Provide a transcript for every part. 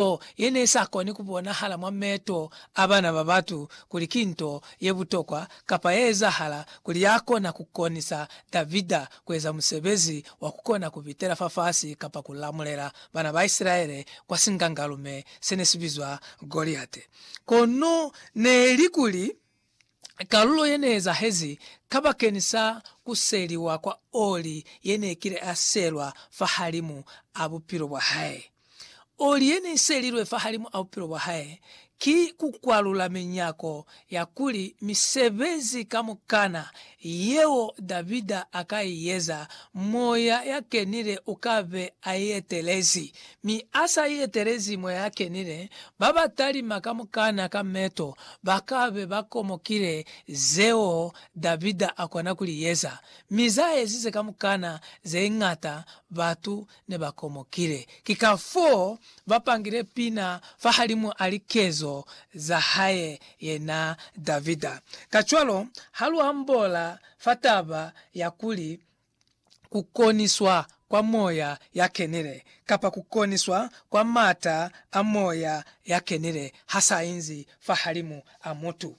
nto ye ne sa koni ku bonahala mwa meeto a bana ba batu kuli ki nto ye butokwa kapa ye ezahala, kuli ya kona ku konisa Davida ku eza musebezi wa ku kona ku bitela fafasi kapa ku lamulela bana ba Isilaele kwa singangalume se ne si bizwa Goliate. Kono ne li kuli, Kalulo yeneezahezi kabakeni sa kuseliwa kwa oli yenekile aselwa fahalimu a bupilo bwahae. Oli yeneiselilwe fahalimu a bupilo bwahae ki kukwalula minyako ya kuli misebezi kamukana yeo Davida a ka i eza, Moya ya Kenile u ka be a i etelezi. Mi a sa i etelezi Moya ya Kenile, ba ba talima kamukana ka meto ba ka be ba komokile zeo Davida a kona ku li eza, mi za ezize kamukana ze ñata batu ne ba komokile. Ki kafoo ba pangile pina fahalimu a likezo za hae yena Davida. Kacwalo, ha lu ambola fa taba ya kuli ku koniswa kwa moya ya kenile, kapa ku koniswa kwa m'ata a moya ya kenile ha s'a inzi fahalimu a mutu,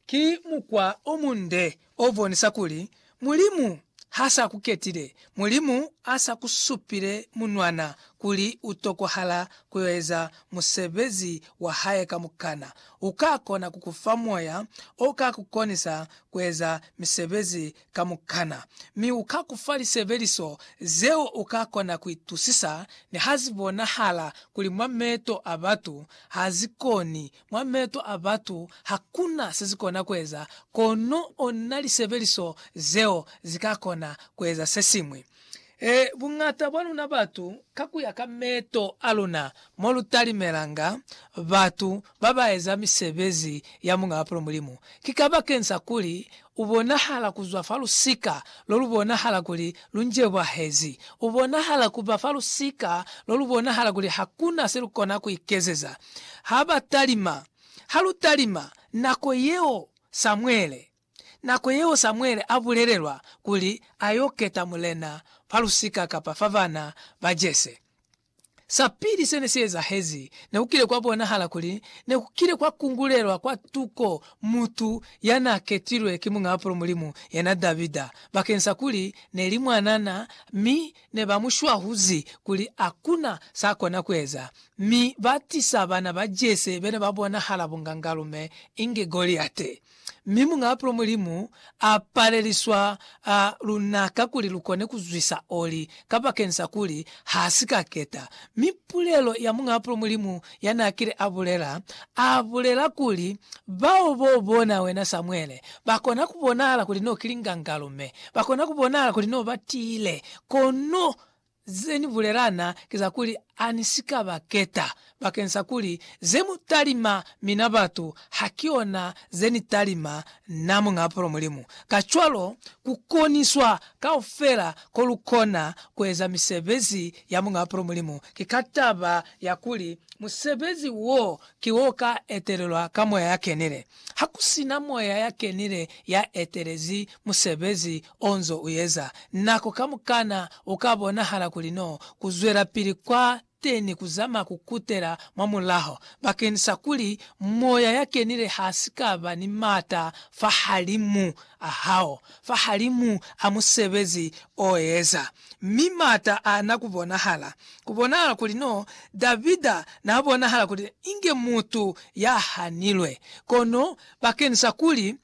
Ki mukwa o munde o bonisa kuli Mulimu ha sa ku ketile. Mulimu a sa ku supile munwana kuli u tokohala ku yo eza musebezi wa hae kamukana. U ka kona ku ku fa moya o ka ku konisa ku eza misebezi kamukana. Mi u ka ku fa lisebeliso zeo u ka kona ku itusisa niha zi bonahala kuli mwa meto a batu ha zi koni Mwa meeto a batu hakuna sezikona kueza, kono ona lisebeliso zeo zikakona kueza sesiñwi. E, buñata bwa luna batu, ka kuya ka meeto a luna, mo lutalimelanga batu babaeza misebezi ya Muñaa Pulu Mulimu, ki kabakeng sa kuli U bonahala ku zwa fa lusika lo lu bonahala kuli lu njebwahezi. U bonahala ku ba fa lusika lo lu bonahala kuli ha ku na se lu kona ku ikezeza. Ha ba talima. Ha lu talima, nako yeo Samuele, nako yeo Samuele a bulelelwa kuli a y'o keta mulena fa lusika kapa fa bana ba Jese, Sapili sene siezahezi, nekukile kwabonahala kuli nekukile kwakungulelwa kwa tuko mutu yanaaketilwe ki Muñaapulo Mulimu, yena Davida, bakeni sakuli neli mwanana mi nebamushwahuzi kuli akuna sakona kueza, mi batisa bana ba Jese bene babonahala bungangalume inge Goliate. Mi Muñ'a Pulo Mulimu a paleliswa luna kakuli lukone kuzwisa oli kabakeni sa kuli ha si ka keta. Mi pulelo ya Muñ'a Pulo Mulimu ya n'a kile a bulela, a bulela kuli, Bao bo bona wena Samuele, ba kona ku bonahala kuli n'o ki lingangalo, mi ba kona ku bonahala kuli n'o ba tiile, kono Ze ni bulelana ki za kuli ha ni si ka ba keta, bakeng sa kuli ze mu talima mina batu ha ki ona ze ni talima na, Muñ'a Apolo Mulimu. Kacwalo, ku koniswa kaufela ko lu kona ku eza misebezi ya Muñ'a Apolo Mulimu ki ka taba ya kuli musebezi wo ki o ka etelelwa ka Moya ya Kenile. Ha ku si na Moya ya Kenile ya etelezi musebezi onzo uyeza nako kamukana uka bonahala kuli no kuzwelapili kwa teni kuzama kukutela mwa mulaho bakeni sa kuli Moya ya Kenile hasikaba ni mata fahalimu ahao, fahalimu a musebezi oeza. Mi mata ana kubonahala, kubonahala kuli no Davida na bonahala kuli inge mutu ya hanilwe, kono bakeni sa kuli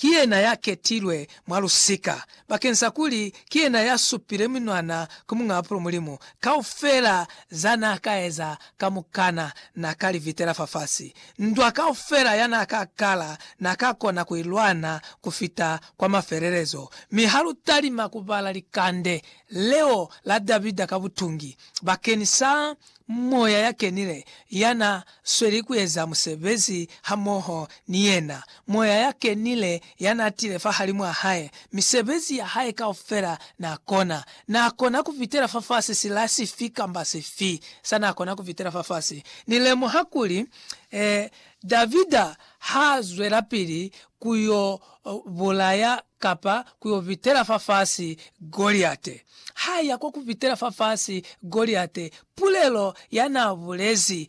ki yena ya ketilwe mwa lusika, bakeng sa kuli ki yena ya supile minwana ku Muñ'a Bapilo Mulimu. Kaufela za n'a ka eza kamukana n'a ka li vitela fafasi. Ndwa kaufela ya n'a ka kala n'a ka kona ku i lwana ku fita kwa mafelelezo. Mi ha lu talima ku bala likande leo la Davida ka butungi bakeng sa Moya ya Kenile ya na sweli ku eza musebezi hamoho ni yena. Moya ya Kenile ya na tile fahalimw'a hae. Misebezi ya hae kaufela n'a kona. N'a kona ku fitela fafasi sila sifi kamba sifi sa n'a kona ku fitela fafasi. Ni lemuha kuli, eh, Davida h'a zwelapili ku y'o bulaya kapa ku yo pitela fafasi Goliate. Ha ya kwa ku pitela fafasi Goliate, pulelo ya n'a bulezi